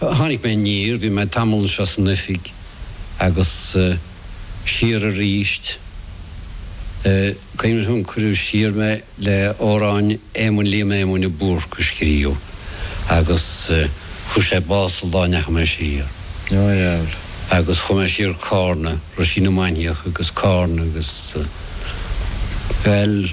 Tháinig mé aniar, bhí mé tamall anseo san oifig agus siar aríst. Cuimhneach liom, cuireadh siar mé le amhráin Éamoinn Liam Éamonn a Búrc a scríobh agus fuair sé bás an lá a ndeachaigh mé siar. Agus chuaigh mé siar Carna, Roisín na Mainiach agus Carna agus, bhuel,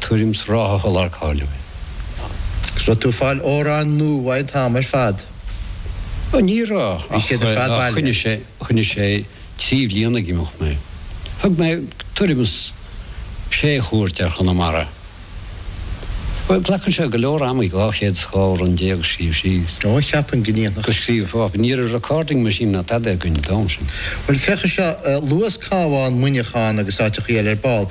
tuairim is ráithe a lar cáiliúil. Is an raibh tú ag fáil amhráin nua an t-am ar fad. Ó ní raibh, ach choinnigh sé, choinnigh sé trí bhliain ag imeacht mé. Thug mé tuairim is sé chuairt ar Chonamara. Bhuel, glacann sé go leor ama, dhá chéad is dhá amhrán déag a scríobh síos. Ó, cheapfainn go ndéanfadh. Go scríobh fág. Ní raibh recording machine ná tada againn an t-am sin. Bhuel, féach anseo, luas Cabhán, Muineachán agus áiteachaí eile ar ball.